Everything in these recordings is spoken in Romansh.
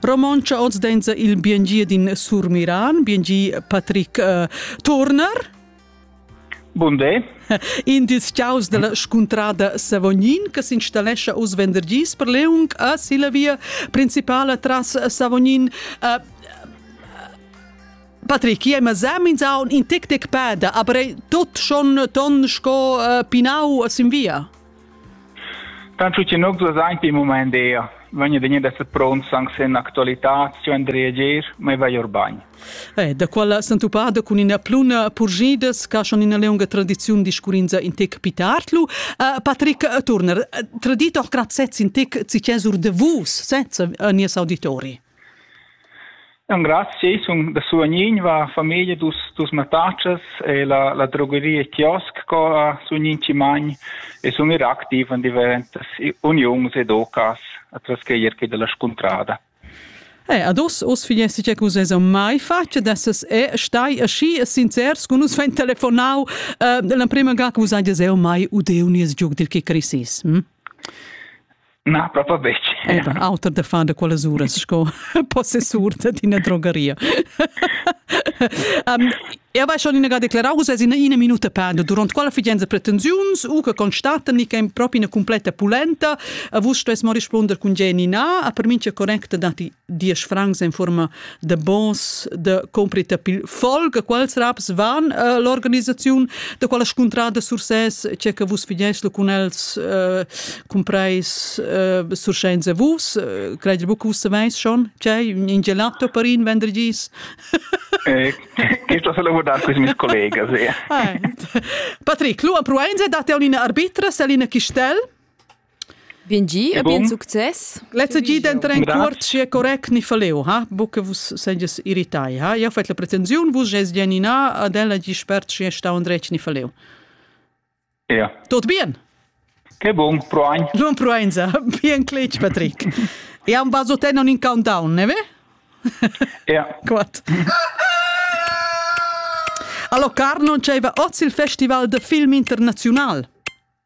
Romontscha oz denza il biengi din Surmiran, biengi Patrick uh, Turner. Bun day. In dils ciaus della scuntrada Savognin che s'installescha us vendergis per Leung a Silla via principala tras Savognin. Uh, Patrick, je ma zamin za in tic tic peda, aber tot schon ton sco uh, pinau sin via. Tant scu chi nu's ves aint ün mumaint d'eir, vegna degna d'esser pronts anche se ün'actualità scu and reager, ma i vai our bagn. Eh, da quella sentupada cun üna pluna purgidas ca schon üna leunga tradiziun discurrinza in te capitartlu. Uh, Patrick Turner, tradit auch grad sez in te cicesur de vus, sezza, a nies auditori. Engrazchi sun da suvegnir va famiglia dus dus mattatschas e la la drogeria Kiosk co a sun gnit chi magn e sun ir activ in diventas uniuns ed ocas atras che ir da la scuntrada. Eh, ad us, us figliesti che cus es mai face d'esses e stai aschi sincers con us fain telefonau uh, l'emprema ga cus hajas eu mai udeu nies giug dil Kikrisis. Hm? Na, proprio betg. Eva, auter da far da quellas uras sco possessur d'ina drogaria. um, Eu vai schon inagà declarar, vus es ina, ina minuta penda durant quella figenza pretensiuns u che constatan che è proprio una completa pulenta, a vus stos mo risponder cun Jenny na, a per min che correcta dati diesch francs en forma de bons de comprita pil folg quals raps van uh, l'organisaziun de quella scuntrada Sursès c'è che vus figies cun els uh, compreis uh, sursenza vus uh, credi bu vus saveis schon c'è in gelato per in vendrigis eh, questo se lo vuol dar questi miei colleghi sì. eh. Patrick lu a Proenze date un arbitra Selina Chistel Bien gi e bien success. Lezza gi denteren cuort sia correct ni faleo, ha? Buca vus seges irritai, ha? Io fet la pretensiun, vus ges dienina ad ella gi spert sia stau andretg ni faleo. Ja. Tot bien. Che bon, proein. Buon proeinza. Bien cletg, Patrick. E un baso te non in countdown, ne ve? Ja. Quat. Allo Car non c'era oz il festival de film internazional.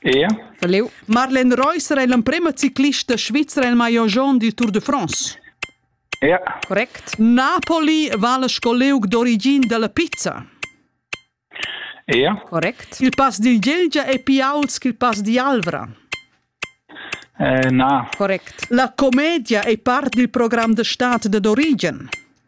Ea. Da leu. Marlene Reusser ei l'emprema ciclista svizra el maillot jaune du Tour de France. Ea. Correct. Napoli vala sco leug d'origin dalla pizza. Ea. Correct. Il pass dil Gelgia è più ault che il pass di Alvra. Eh, na. Correct. La commedia è part del programm de stat de d'Origen.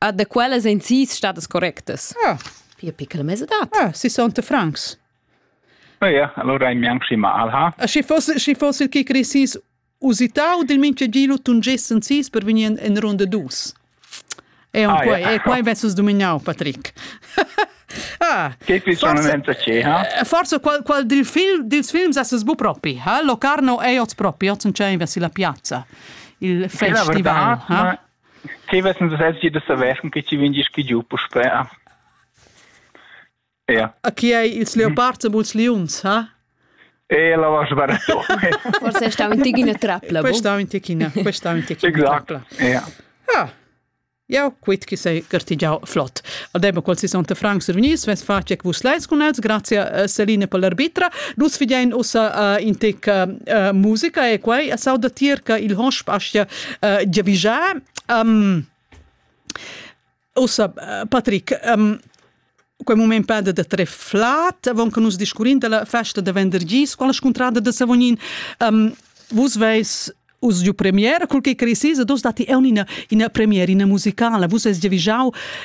Ah, da quellas ein sis stadas correctas. Ah. Pia piccola mesadad. Ah, 60 francs. Oh ja, allora è mianchi ma alha. Ah, schi fosse, schi fosse che crescis usitau del mincha giro tungessen sis per venir in, in ronda dus. E ah, quai, ja. e quai vessus dominau, Patrick. ah, che qui sono senza ce, ha? Forse qual, qual dil film, dils films esses bu propi, ha? Locarno e oz propi, oz non c'è in versi la piazza. Il festival. La verdad, ha? Ma Che vessen nus els gie da saver cun che tgi vegn gie schigiu puspè? Ja. A chi ei ils leopards e buls liuns, ha? E la va sbarretto. Forse sta un ticchino trapla. Questa un ticchina, questa un ticchina trapla. Ja. Ah. Jau quit chi sei gartigiau flot. Aldemo qual si sonte Frank survenis, ves face vus leis con els, grazie uh, Celine per l'arbitra. Nus figein ussa uh, in tec uh, uh, musica e quei a sau da tier che il hosp astia uh, giavischar. Um, Ossa, uh, Patrick, um, quei moment peda da tre flat, avon che nus discurrin della festa da vendergis con la scontrada da Savonin. Um, vus veis us giu premiera, col che cresisa, dos dati è una, una premiera, una musicala, vus es giavischau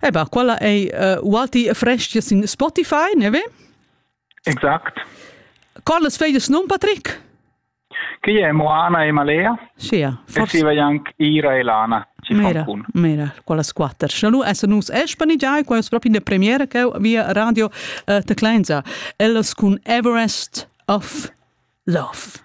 Eba, quella ei uh, ualti frestgia sin Spotify, ne ve? Exact. Quallas veglias nun, Patrick? Che è Moana e Malea? Sì, forse. E si vai anche Ira e Lana. Mira, mira, quella squatter. Nu es nus espani giai, quai es proprio in premiera che via Radio uh, Teclenza. Ellas cun Everest of Love.